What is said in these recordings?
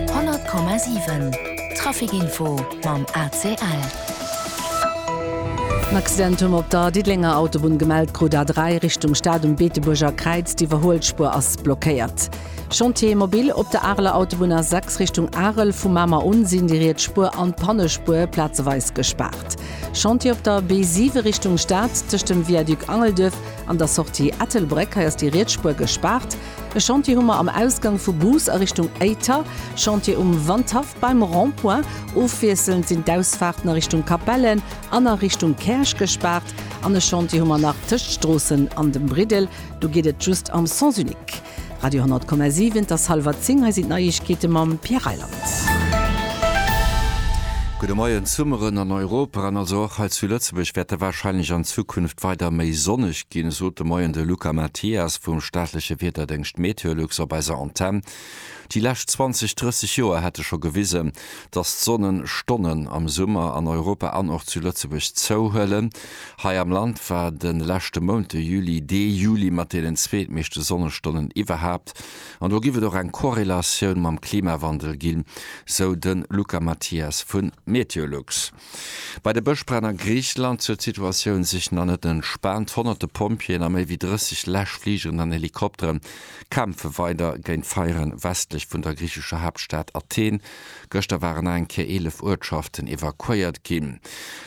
100,7 Trafic info mam ACL. En Accident hu mer op der Diddelenger Autobunn gemellt krut, d'A3 Richtung Stad um Beetebuerger Kräiz. D'Iwwerhuelspuer ass blockéiert. Chantier mobile op der Areler Autobunn A6 Richtung Arel, vu Mamer un sinn déi riets Spuer an d'Pannespuer plazeweis gespaart. Chantier op der B7 Richtung Stad, tëscht dem Viaduc Angelduerf an der Sortie Ettelbréck, hei ass déi riets Spuer gespaart. E Chantier hu mer am Ausgang vu Goos a Richtung Éiter, Chantier um Wandhaff beim Rond-point. Ofwiesselnd sinn d'Ausfaarten a Richtung Capellen an a Richtung Käerch gespaart. An e Chantier hu mer nach tëscht Stroossen an dem Briddel, do geet et just am Sens unique. Radio 10,7, et ass hallwer zéng, hei sinn d'Neiegkeete mam Pierre Reyland. Gudde Moien. D'Summeren an Europa an also och hei zu Lëtzebuerg wäerte warscheinlech an Zukunft weider méi sonneg. Ginn, sot de Moien de Luca Mathias vum staatleche Wiederdéngscht Meteolux op eiser Antenn. Déi lescht 20, 30 Joer hätte scho gewisen, datt d'Sonnenstonnen am Summer an Europa an och zu Lëtzebuerg zouhuelen. Hei am Land war de leschte Mount, de Juli, dee Juli mat deenen zweetmeeschte Sonnestonnen iwwerhaapt. An do giff et och eng Korrelatioun mam Klimawandel ginn, sou de Luca Mathias vu Meteolux. Bei de Bëschbränn a Griicheland huet d'Situatioun sech nach net entspaant. Honnerte Pompjeeën a méi wéi 30 Läschfligeren an Helikoptere kämpfe weider géint d'Feiere westlech vun der griichescher Haaptstad Athen. Gëschter waren nach eng Kéier 11 Uertschaften evakuéiert ginn.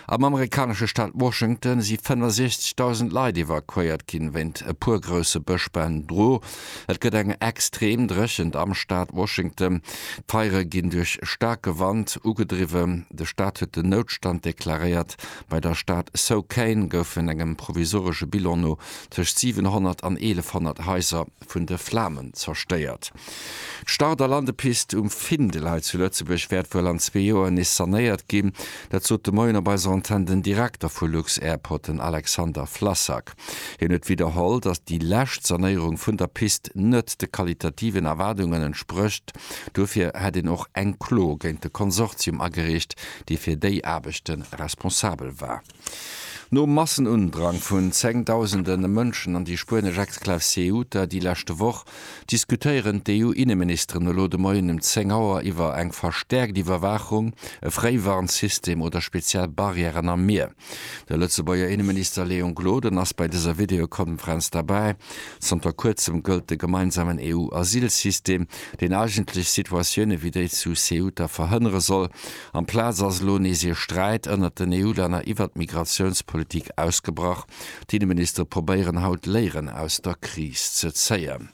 Am amerikanesche Staat Washington si 65.000 Leit evakuéiert ginn, wéint e puer grousse Bëschbränn dru. Et gëtt eng extrem Dréchent am Staat Washington. D'Feiere ginn duerch staarke Wand ugedriwwen. De Staat huet den Noutstand deklaréiert. Bei der Stad Souquane goufen engem provisoresche Bilan no tëscht 700 an 1.100 Haiser vun de Flamen zerstéiert. D'Start a Landepist um Findel hei zu Lëtzebuerg wäert wuel an zwee Joer nees sanéiert ginn. Dat sot de Moien op eiser Antenn den Direkter vu lux-Airport, den Alexander Flassak. Hien huet widderholl, datt déi lescht Sanéierung vun der Pist net de qualitativen Erwaardungen entsprécht. Dofir hätt een och eng Klo géint de Konsortium agereecht, dee fir déi Aarbechte responsabel war. Nom Massenundrang vun zengdausende Mënschen an déi spuenesch Exklav Ceuta déi leschte Woch, diskutéieren d'EU-Inneministeren elo de Moien um 10 Auer iwwer eng verstäerkt Iwwerwaachung, e Fréiwarnsystem oder speziell Barrièren am Mier. De Lëtzebuerger Inneminister Léon Gloden ass bei dëser Videokonferenz derbäi. Zanter kuerzem gëllt de gemeinsamen EU-Asylsystem, deen eigentlech Situatioune wéi déi zu Ceuta verhënnere soll. Amplaz ass elo nees ee Sträit ënnert den EU-Länner iwwert d'Migratiounspolitik ausgebrach. D'Inneministere probéieren haut Léieren aus der Kris ze zéien.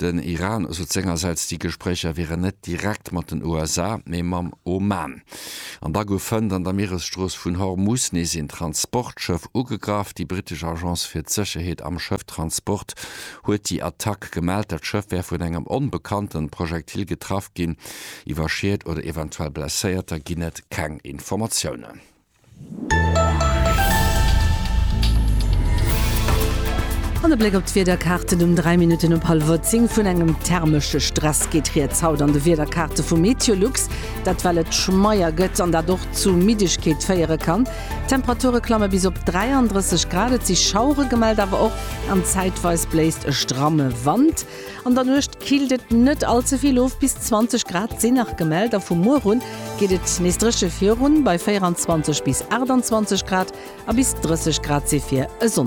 Den Iran sot sengersäits, déi Gespréicher wieren net direkt mat den USA, mee mam Oman. An da goufen an der Mieresstrooss vun Hormus nees een Transportschëff ugegraff. Déi brittesch Agence fir d'Sécherheet am Schëfftransport huet déi Attack gemellt. Dat Schëff wär vun engem onbekannte Projektil getraff ginn. Iwwer Schied oder eventuell Blesséierter ginn et keng Informatiounen. An e Bléck op d'Wiederkaarten um 3 Minutten op hallwer 10. Vun engem thermesche Stress geet rieds haut an de Wiederkaarte vu Meteolux. Dat well et schmeier gëtt an dat och zu Middegkeet féiere kann. D'Temperature klamme bis op 33 Grad, et si Schauere gemellt, awer och an zäitweis bléist e stramme Wand. An der Nuecht killt et net all ze vill of, bis 20 Grad sinn nach gemellt a vu muer un geet et nees dréche virun, bei 24 bis 28 Grad a bis 30 Grad si fir e Sonndeg.